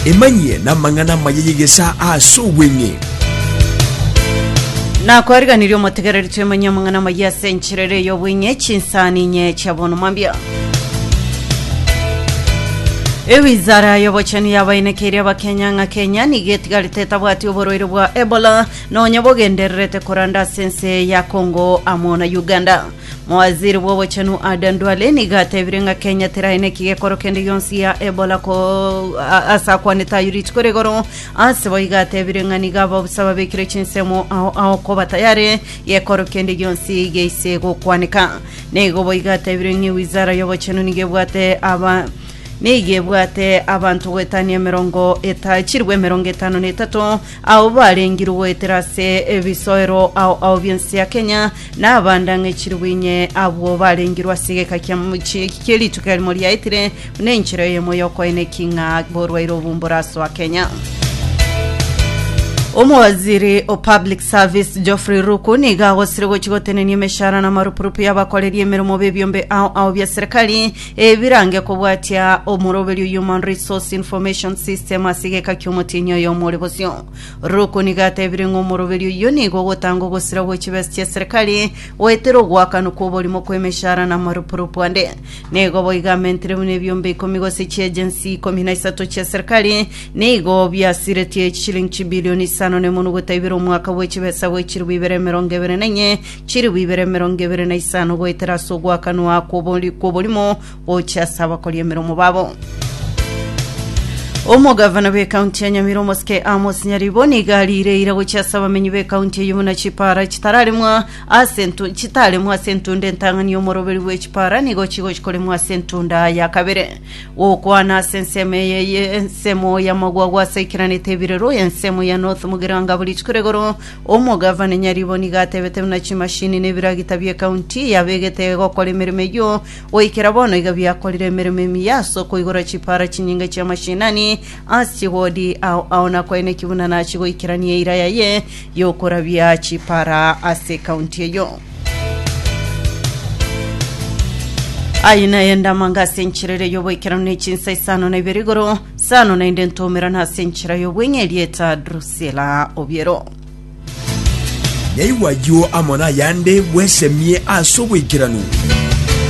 Emanyie namang'ana amaya y'egesaa ase obweng'e. Nakwariganirie omotegereri twemanyie amang'ana amaya ase enchera ere y'obweng'e chinsani inye chia bono mambia ewizara y'obochenu yabainekeire abakenya ng'a kenya nigo etigarete etabwati oborwaire bwa ebola nonya bogendererete koranda ase ense ya congo amo na uganda Mowaziri bw'obochenu Aden Duale nigo atebire ng'a Kenya terae neki gekoro kende gionsi ya Ebola ko a- ase akwanete ayio rituko rigoro ase bo iga atebire ng'a nigo ababusa babekire chinsemo ao ao koba tayare gekoro kende gionsi geise gokwaneka neigo bo iga atebire ng'a ewizara y'obochenu nigo ebwate aba nigo ebwate abanto goetania emerongo eta chirwe emerongo etano na etato ao barengirwe goetera ase ebisoero ao ao bionsi ya Kenya Nabandang'echirwe inye abwo barengirwe ase egeka kia mochie eki kie rituko erimo riaetire, buna enchera eyemo y'okoina eki ng'a borwaire obu mborasoa Kenya. Omowaziri o Public Service Geoffrey Ruku nigo agosire gochia gotenenia emeshara na amarupurupu y'abakoreri emeremo b'ebiombe ao ao bia serikali ebirange kobwatia omoroberio Human Resource Information System ase egeka ki'omotienyi oyomo ore bosio. Roko nigo atebire ng'a omoroberi oyio nigo ogotanga ogosira gwe chibesa chia serikali, goetera ogoakanwa kw'oborimo kw'emeshara na amarupurupu ande. Nigo boigo amentire buna ebiombe ikomi gose chi'ejensi ikomi na isato chia serikali, nigo biasiretie echishilingi chibilioni isano na emonwa gota ibere omwaka bwe chibesa gwe chilibu ibere emerongo ebere na enye, chilibu ibere emerongo ebere na isano goetera ase ogoakanwa kw'obori- kw'oborimo gochia ase abakori emeromo babo. Omogavana b'ekaunti ya Nyamira omosike Amos Nyaribo nigo ariire ira gochia ase abamenyi b'ekaunti eyio buna chipara chitararemwa ase entu- chitaremwa ase entunda entang'ani y'omoroberi bwe chipara nigo chigochia koremwa ase entunda ya kabere gokwana ase ensemo eye ye ensemo y'amagwagwa ase aikeranete ebirero ensemo ya North Mugirango abo rituko rigoro omogavana Nyaribo nigo atebete buna chimashini na ebiragita bi'ekaunti yabegete gokora emeremo eyio Goikera bono iga biakorire emeremo emiya ase okoigora chipaara chinyinge chi'amashinani ase chigodi ao ao na koeneki buna nachie goikerania eira yaye y'okorabia chipaara ase ekaunti eyio. Aye naye ndamanga ase enchera eria y'oboikeranu ne chinsa isano na ibere igoro, sano naende ntoumerane ase enchera y'obweng'e erieta Drusila Obiero. Naigwa ayio amo nayande bwesemie ase oboikeranu.